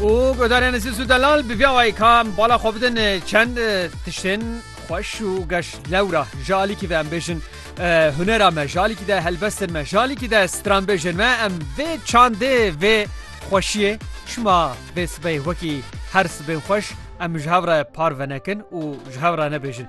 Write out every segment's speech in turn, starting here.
Û guhdarên li Sîs û Delal bi vî awayî ka em bala xwe bidin çend tiştên xweş û geş lewra ji alîkî ve em bêjin hunera me ji alîkî de helbestên me ji alîkî de stranbêjên me em vê çandê vê xweşiyê şima vê sibey wekî her sibên xweş em ji hev re parve nekin û ji hev re nebêjin.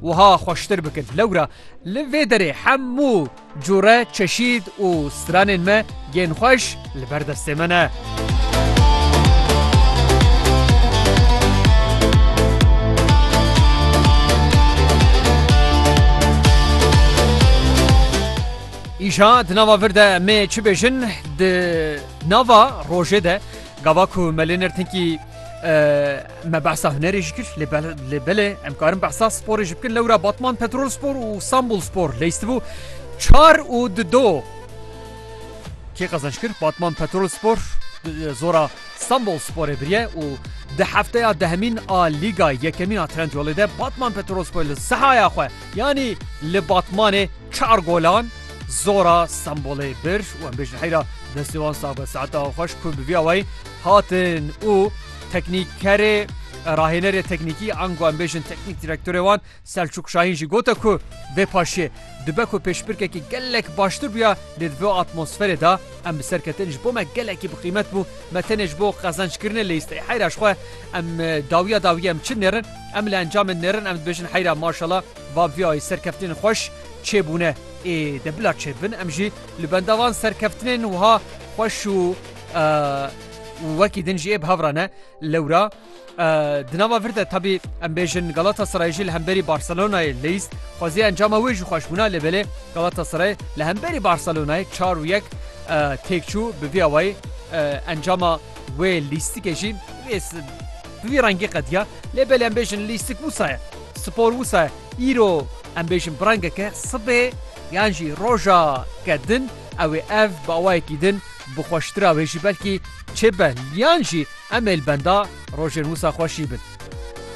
Wiha xweştir bikin. Lewra li vê derê hemû cure çeşîd û stranên me yên xweş li ber destê me ne. Îşa di nava vir de mê çi bêjin di nava rojê de gava ku me lê nirtinkî me behsa hunerê ji kir lê belê em karin behsa sporê ji bikin lewra Batman Petrol Spor û Sambul Spor leyistibû çar û di do kê qezenç kir Batman Petrol Spor zora Sambul Sporê biriye û di hefteya dehemîn a Lîga yekemîn a Trendyolê de Batman Petrol Spor li sehaya xwe yanî li Batmanê çar golan zora Sambulê bir û em bêjin heyra destê wan sabe saeta xweş ku bi vî awayî hatin û teknîkerê rahênerê teknîkî ango em bêjin teknîk direktorê wan Selçûk Şahîn jî gote ku vê paşê dibe ku pêşbirkekî gelek baştir bûya lê di vê atmosferê de em bi ser ketin ji bo me gelekî bi qîmet bû me tenê ji bo qezenckirinê lê îstê heyra ji xwe em dawiya dawiyê em çi nêrin em li encamê nêrin em dibêjin heyra maşala va bi vê ayê serkeftinên xweş çêbûne ê de bila çêbin em jî li benda van serkeftinên wiha xweş û û wekî din jî ê bi hev re ne. Lewra di nava vir de tebî em bêjin Galatasarayê jî li hemberî Barcelonayê leyîst xwezî encama wê jî xweş bûna lê belê Galatasaray li hemberî Barcelonayê çar û yek têk çû bi vî awayî encama wê lîstikê jî bi vî rengî qediya lê belê em bêjin lîstik wisa ye spor wisa ye îro em bêjin bi rengeke sibê yan jî roja kedin Ew ê ev bi awayekî din bi xweştira wê jî belkî çê be liyan jî em ê li benda rojên wisa xweşî bin.